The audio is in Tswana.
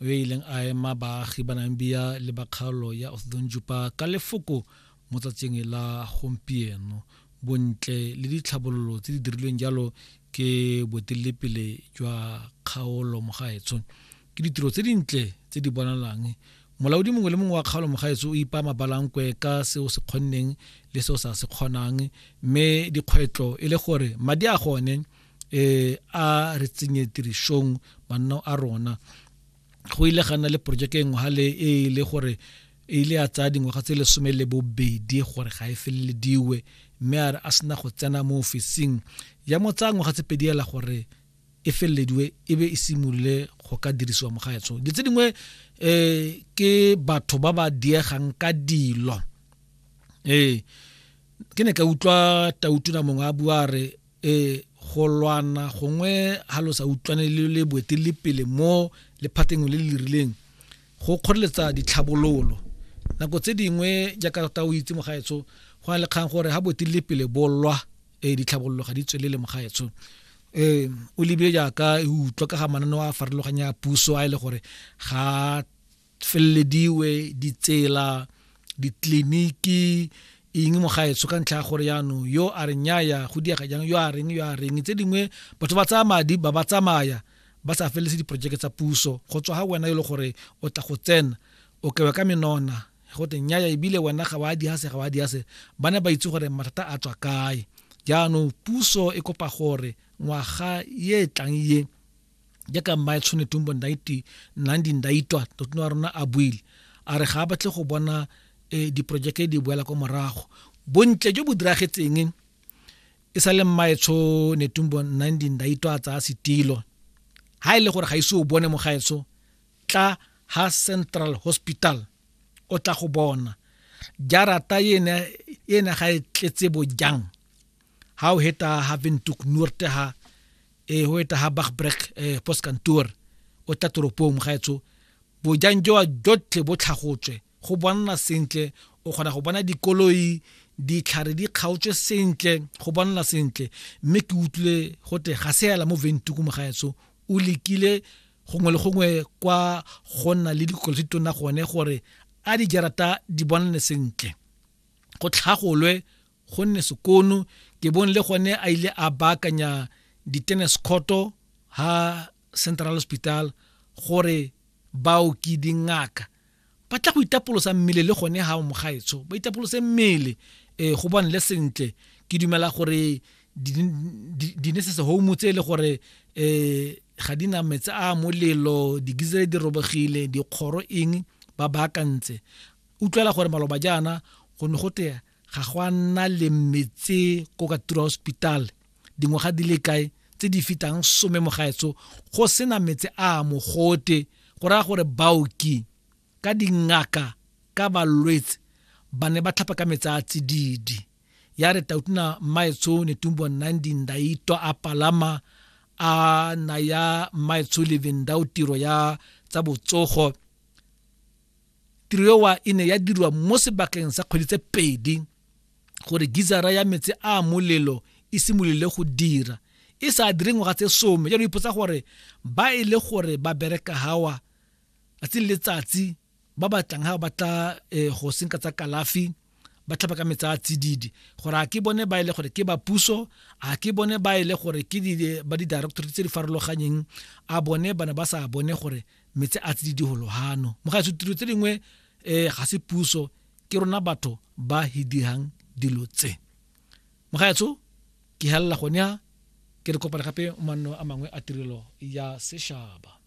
yo e ileng a ema baagi ba Namibia le ba kgaolo ya Othudonjupa ka lefoko mo tsatsing la gompieno bontle le ditlhabololo tse di dirilweng jalo ke boeteledipele jwa kgaolo mogaetsho ke ditiro tse dintle tse di bonalang molaodi mongwe le mongwe wa kgaolo mogaetsho o ipa mabalankwe ka seo se kgonneng le seo sa se kgonang mme dikgwetlho e le gore madi a gone eh a re tsenye tirisong manno a rona go ile ga nna le projeke engwe ga le e le gore e ile ya tsaya dingwaga tse lesome le bobedi gore ga e felelediwe mme a re a sena go tsena mo ofising ya mo tsaya ngwaga tse pedi ela gore e felelediwe e be e simolole go ka dirisiwa mo gaetsho di tse dingwe um ke batho ba ba diegang ka dilo ee ke ne ka utlwa tautuna mongwe a bua re e go lwana gongwe ha lo sa utlwane le le boeteledipele mo lephateng le le rileng go kgoreletsa ditlhabololo nako tse dingwe jaaka ta o itse mogaetsho go na le kgang gore ha boeteledipele bo lwa e ditlhabololo ga di tswelele mogaetsho um o lebile jaaka e utlwa ka ga mananeo a farologanya puso a e le gore ga felelediwe ditsela ditleliniki eng mo gaetsho ka ntlha ya gore yaanong yo a re nyaya go diega jang yo a reng yo a reng tse dingwe batho ba tsaya madi ba ba tsamaya ba sa feleletse diporojeke tsa puso go tswa ga wena e le gore o tla go tsena o kewe ka menona go te nyaya ebile wena ga wa diase ga wa diase ba ne ba itse gore mathata a tswa kae jaanong puso e kopa gore ngwaga ye e tlang ye jaaka mmae tshone tumbo 19 ndaitwa totona wa rona a buile a re ga a batle go bona eh, diporojeke di boela kwa morago bontle jo bo diragetseng e sa le mmaetsho netumbo 19 ndaitwa a tsaya setilo ha e le gore ga ise o bone mogaetsho tla ha central hospital o tla go bona jarata ena ga e tletse bojang ha o heta ha Windhoek Noord ha e ho eta ha Bagbrek e postkantoor o tla toropong gaetsho bojang joa jotlhe bo tlhagotswe go bonna sentle o kgona go bona dikoloi ditlhare di kgaotswe sentle go bonala sentle mme ke utlwile go te ga se ela mo ventuku mogaetso o lekile gongwe le gongwe kwa go nna le dikolo tse tona gone gore a dijarata di bonale sentle go tlhagolwe gonne sekono ke bone le gone a ile a baakanya di-tennis courto ha central hospital gore baoki dingaka ba tla go itapolosa mmele le gone ha o mogaetsho ba itapolose mmele um go bone le sentle ke dumela gore dinesese home tse e le gore um ga di na metsi a molelo digizele di robegile dikgoro eng ba baakantse utlwela gore maloba jaana go ne go tea ga go a nna le metse ko ka tura hospital dingwaga di le kae tse di fitang some mogaetso go sena metse a mogote go raya gore baoki ka dingaka ka balwetse ba ne ba tlhapa ka metse a tsididi ya re tautuna mmaetsho netumbo nandi ndaito a palama a naya mmaetsho levendao tiro ya tsa botsogo tiro ewa e ne ya dirwa mo sebakeng sa kgwedi tse pedi gore gizara ya metsi a molelo e simolole go dira e sa dire ngwaga tse some jalo ipotsa gore ba e le gore ba bereka hawa tsatsi le letsatsi ba batlang ha ba tla eh, go senka tsa kalafi ba tlhapa ka metsa a tsididi gore a ke bone ba e le gore ke ba puso a ke bone ba e le gore ke ba di-directorate tse di farologanyeng a bone bana ba sa bone gore metse a tsididi go lohano mo ga tiro tse dingwe um ga se puso ke rona batho ba hi dirang dilo tse mo ga etso ke helela gone ya ke re kopana gape manno a mangwe a tirelo ya seshaba